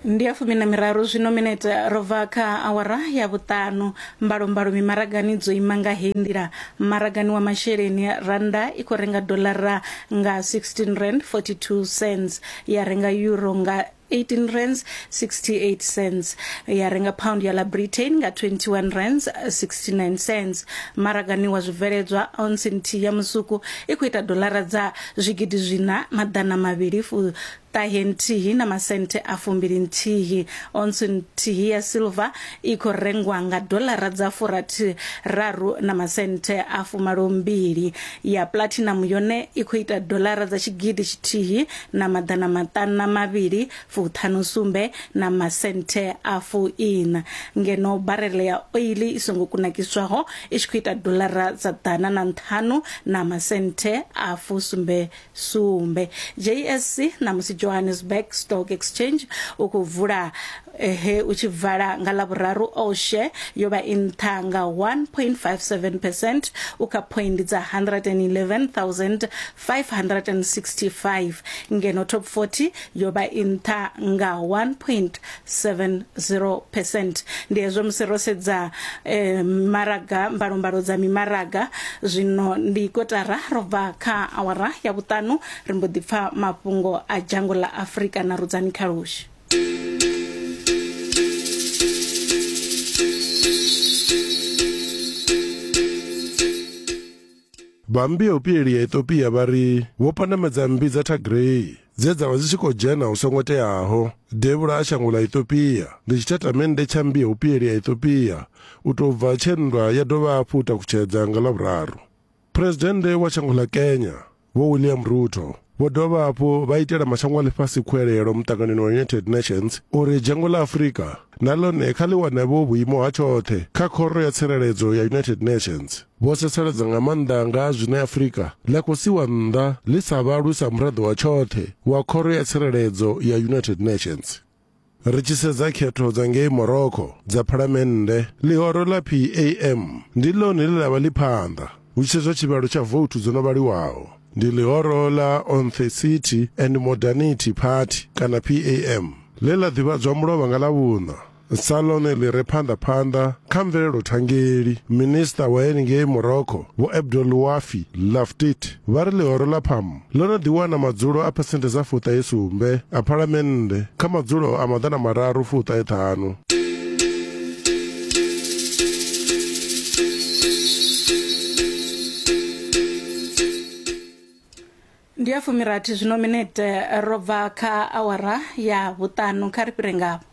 ndi ya fumi na miraru zwino minete ro bva kha awara ya vhuṱanu mbalombalo mimaragani dzo ima nga heyi nḓila maragani wa masheleni rannda i khou renga dolara nga 16 rand 42 cents ya renga euro nga 18 rands 68 cents ya renga pound ya la britain nga 21 rands 69 cents maragani wa zwibveledzwa ounce nthihi ya musuku i khou ita dolara dza zwigidi zwiṋa maḓana mavhili fu ṱahe nthihi na masenthe a fumbili nthihi. Ontsu nthihi ya silver i khou rengwa nga dolara dza furathi raru na masenthe a fumalo mbili. Ya platinum yone i khou ita dolara dza tshigidi tshithihi na maḓana maṱana mavhili fuṱhanu sumbe na masenthe a fuiṋa, ngeno barele ya oiḽi i songo kunakiswaho i tshi khou ita doḽara dza ḓana na nṱhanu na masenthe a fusumbe sumbe. JSC ṋamusi Johannesburg Stock Exchange u khou vula he u tshi vala nga Ḽavhuraru all share yo vha i nṱha nga 1.57 percent u kha phoindi dza 111 565 ngeno top 40 yo vha i nṱha nga 1.70 percent ndi hezwo musi ro sedza eh, maraga mbalombalo dza mimaraga zwino ndi kotara ro bva kha awara ya vhuṱanu ri mbo ḓi pfa mafhungo a dzhango ḽa afurika na rudzani khalushi Vha mmbi ya u pilelia Ethiopia vha ri vho pandamedza mmbi dza Tigray dze dza vha dzi tshi khou dzhena hu songo teaho devhula a shango ḽa Ethiopia. Ndi tshitatamennde tsha mmbi ya u pilelia Ethiopia u tou bva tshe nndwa ya dovha hafhu u takutshedza nga Ḽavhuraru. Phresidennde wa shango ḽa Kenya, Vho William Ruto, Vho dovha hafhu vha itela mashango a ḽifhasi khuelelo muṱanganoni wa United Nations uri dzhango ḽa Afrika na ḽone kha ḽi wane vho vhuimo ha tshoṱhe kha Khoro ya Tsireledzo ya United Nations. Vho setsheledza nga maanḓa nga ha zwine Afrika ḽa khou siwa nnḓa ḽi sa vhalwi sa muraḓo wa tshoṱhe wa Khoro ya Tsireledzo ya United Nations. Ri tshi sedza khetho dza ngei Morocco dza phalamennde, ḽihoro ḽa PAM ndi ḽone ḽe ḽa vha ḽi phanḓa hu tshi sedzwa tshivhalo tsha vouthu dzo no vhaliwaho. Ndi ḽihoro ḽa Authenticity and Modernity Party kana PAM ḽe ḽa ḓivhadzwa mulovha nga Ḽavhuṋa sa ḽone ḽi re phanḓa phanḓa kha mvelelo thangeli. Minisiṱa wa henengei Morocco Vho Abdel Ouafi Laftit vha ri ḽihoro ḽa PAM Ḽo no ḓiwana madzulo a phesenthe dza fuṱahe sumbe a phalamennde kha madzulo a maḓana mararu fuṱahe ṱhanu. ndi ya fumirathi zwino minete ro bva kha awara ya vhuṱanu kha ri fhire ngavho